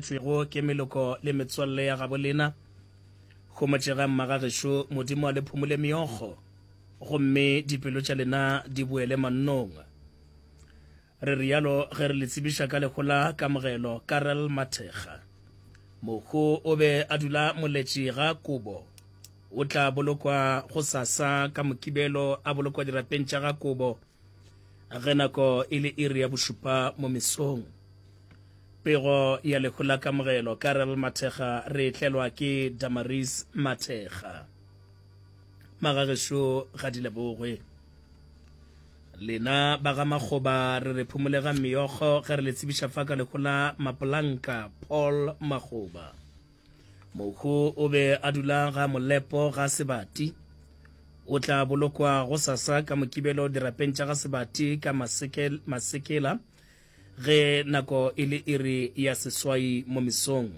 Tswego ke meloko le metswalle ya gabo lena. Homotšegang magagešo, Modimo a le phumole meokgo, gomme dipelo tša lena di boele mannong. Re realo ge re le tsebiša ka lehu la Kamogelo Karel Mathekga. Mohu o be a dula moletši ga Kobo. O tla bolokwa gosasa ka Mokibelo a bolokwa dirapeng tša ga Kobo ge nako e le iri ya bošupa mo mesong. Pego ya lehu la Kamogelo, Karel Mathekga re e tlelwa ke Damaris Mathekga. Magagešo ga di lebogwe. Lena ba ga Makgoba re re phumolega meokgo ge re le tsebiša fa ka lehu la Mapolanka Paul Makgoba. Mohu o be a dula ga Molepo ga Sebati. O tla bolokwa go sasa ka Mokibelo dirapeng tša ga Sebati ka Masekela Ge nako e le iri ya seswai mo mesong,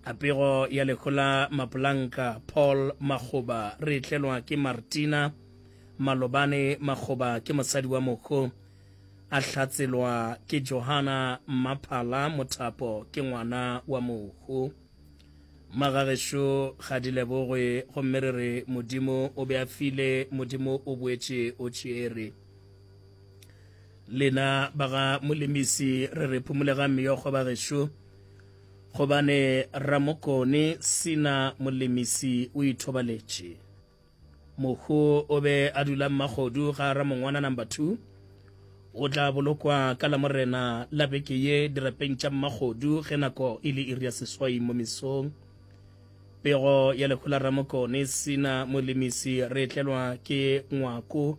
a pego ya lehola Mapolanka, Paul Makgoba, re tlelwa ke Martina Malobane Makgoba, ke mosadi wa moko, a hlatselwa ke Johana Mmaphala Mothapo, ke ngwana wa moko. Magagešo ga di lebogwe gomme re re Modimo o be a file, Modimo o boetše o tšere. Lena ba ga Molemisi re re phumolegang meokgo bagešo, gobane Ramokone Sina Molemisi o ithobaletše. Mohu o be a dula Mmagodu ga Ramongwana number two. O tla bolokwa ka Lamorena la beke ye dirapeng tša Mmagodu ge nako e le iri ya seswai mo mesong. Pego ya lehu la Ramokone Sina Molemisi re e tlelwa ke ngwako.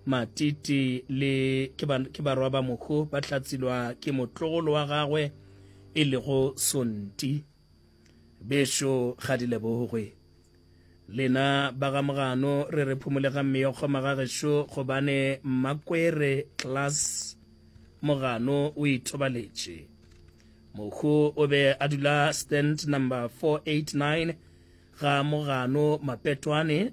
Matiti le ke, ba, ke barwa ba mohu ba hlatsilwa ke motlogolo wa gagwe e lego Sonti. Bešo ga di lebogwe. Lena ba ga Mogano re re phumolegang meokgo magagešo gobane Mmakwere Klaas Mogano o ithobaletše. Mohu o be a dula stand number 489 ga Mogano Mapetwane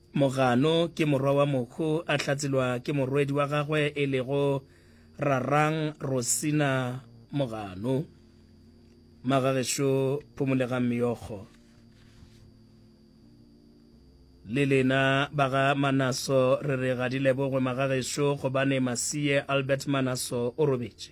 Mogano ke morwa wa Mokhu a hlatselwa ke morwedi wa gagwe e lego Rarang Rosina Mogano. Magagešo phomolegang meokgo. Le lena ba ga Manaso re re ga di lebogwe magagešo gobane Masiye Albert Manaso o robetše.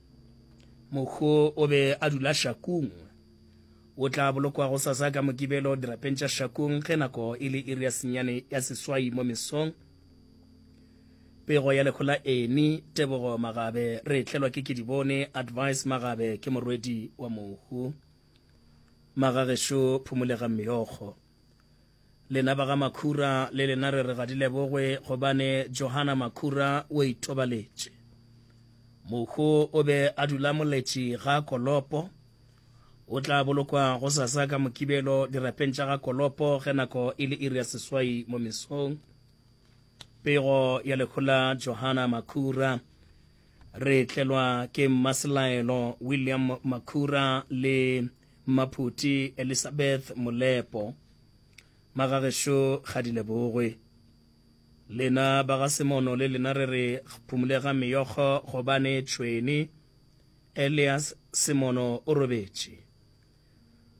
Mokgo o be a dula Shakung. O tla bolokwa go sasa ka Mokibelo dirapeng tša Shakung ge nako e le iri ya senyane ya seswai mo mesong. Pego ya lehola eni, Tebogo Magabe re tlelwa ke Kedibone Advice Magabe ke morwedi wa mohu. Magagešo phomolegang meokgo. Lena ba ga Makhura le lena re re ga di lebogwe gobane Johana Makhura o itobaletše. Mokgo o be a dula moletši ga Kolopo. O tla bolokwa go sasa ka Mokibelo dirapeng tša ga Kolopo ge nako e le iri ya seswai mo mesong. Pego ya lehola Johana Makhura. Re tlelwa ke Mmaselaelo William Makhura le Mmaphuti Elisabeth Molepo, Magagešo ga di lebogwe. Lena ba ga Semono le lena re re phumulega meyokgo gobane tšhweni Elias Semono o robetše.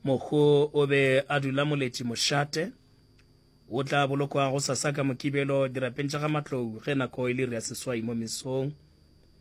Mokgo o be a dula moletši mošate, o tla bolokwa gosasa ka Mokibelo dirapeng tša ga Matlou ge nako e le iri ya seswai mo mesong.